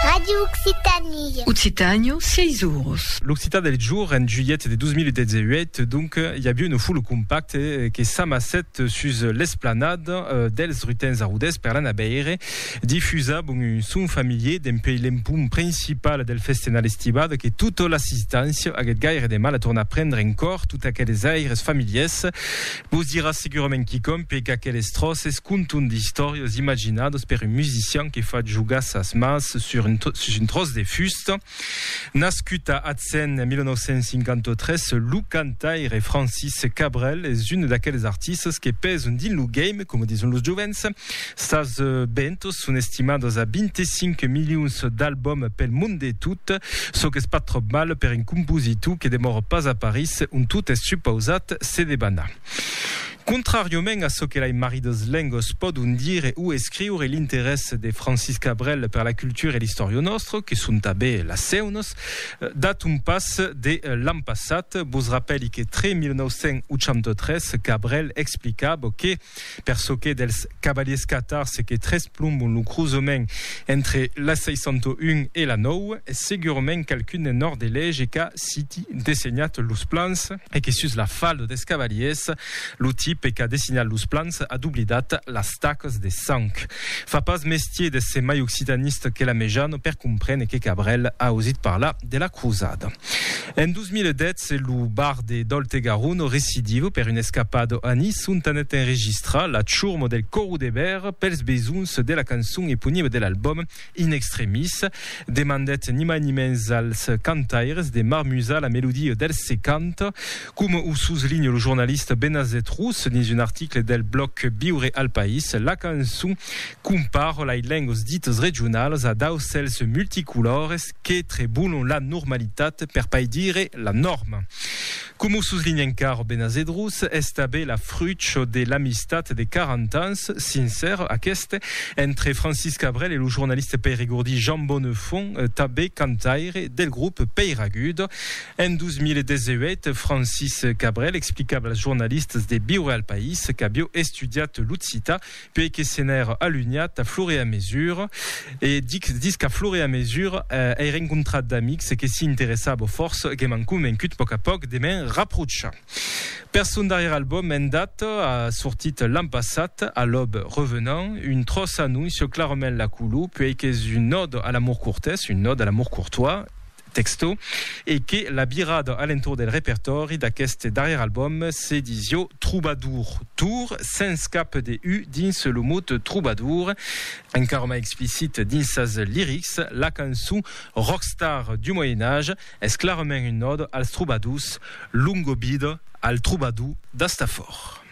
Radio Occitanie. Occitània, 6 oros. L'Occità del jorn en julhet de 2018, donc, i aviá una foula compacta que s'amassèt sus l'esplanada dels rutens a Rodés per l'anar veire. Difusàvon un son familier dempuèi l'empont principal del festenal estival que tota l'assistància aguèt gaire de mal a tornar prendre en còr tot aqueles aires familiers. Vos diràs segurament quicòm per qu'aqueles tròces conton d'istòrias imaginadas per un musician que fa jogar sas mans sus un, sus un tròç de fusta. Nascut a Atzen en 1953, lo cantaire Francis Cabrel es un d'aqueles artistas que pèson dins lo game, coma dison los jovents, Sas ventas son estimadas a 25 milions d'albòms pel mond e tot, çò qu'es pas tròp mal per un compositor que demòra pas a París, ont tot es supausat se debanar. Contràriament a çò que lai maridas lengos pòdon dire o escriure, l'interès de Francis Cabrèl per la cultura e l'istòria nòstra, que son tanben las seunas, dat un pas de l'an passat. Vos rapèli que tre 1983, Cabrèl explicava que. Per çò qu'es dels cavaliers catars, se que tresplombon lo crosament entre la 601 e la 9, es segurament qualqu'un enòr de lège qu'a siti dessenhat los plans, e que sus la falha dels cavaliers, lo tipe qu'a dessinat los plans a doblidat las tachas de sang. Fa pas mestier d'èsser mai occitanista que la Mejano per comprene que Cabrèl a ausit parlar de la crosada. En 2010, lo bar de Doltegaruno recidiu per un escapado a Nice ont anèt enregistrar la churmo del Coru de Bèr pels besonhs de la cançon eponima de l'album In Extremis, demandèt ni mai ni mens als cantaires de marmusar la melodia dels secanta, coma o soslinha lo jornalista Benazet Rousse dins un article del blòg Viure al País, la cançon compara lai lengos ditas regionalas a d'aucèls multicolores, que trebonon la normalitat, per pas dire la nòrma. Coma o soslinha encara Bena Zedrous, es tanben la fruch de l'amistat de 40 ans, sincèr aqueste, entre Francis Cabrel e lo jornalista peirigordí Jean Bonnefond, tanben cantaire del grop Peiragudo. En 2018, Francis Cabrel explicava als jornalistas de Viure al País qu'avió estudiat l'occitan Puèi que se n'èr alunhat a flure a mesura, e dis qu'a flure a mesura èi rencontrat d'amics que s'i interessabo fòrç, que m'an convencut pòc a pòc de me'n raprochar. Per son darrièr album, en data, a sortit l'an passat, A l'aube revenant, un tròç anóncio clarament la color, puèi qu'es un ode a l'amor cortès, un ode a l'amor courtois, Texto, E que la virada a l'entorn del repertòri d'aqueste darrièr albòm se disió Troubadour Tour, sens cap de u dins lo mot troubadour. Encara mai explicit dins sas lyrics, la cançon Rockstar du Moyen Age es clarament un òde als troubadours, longo vida al troubador d'Astafòrt.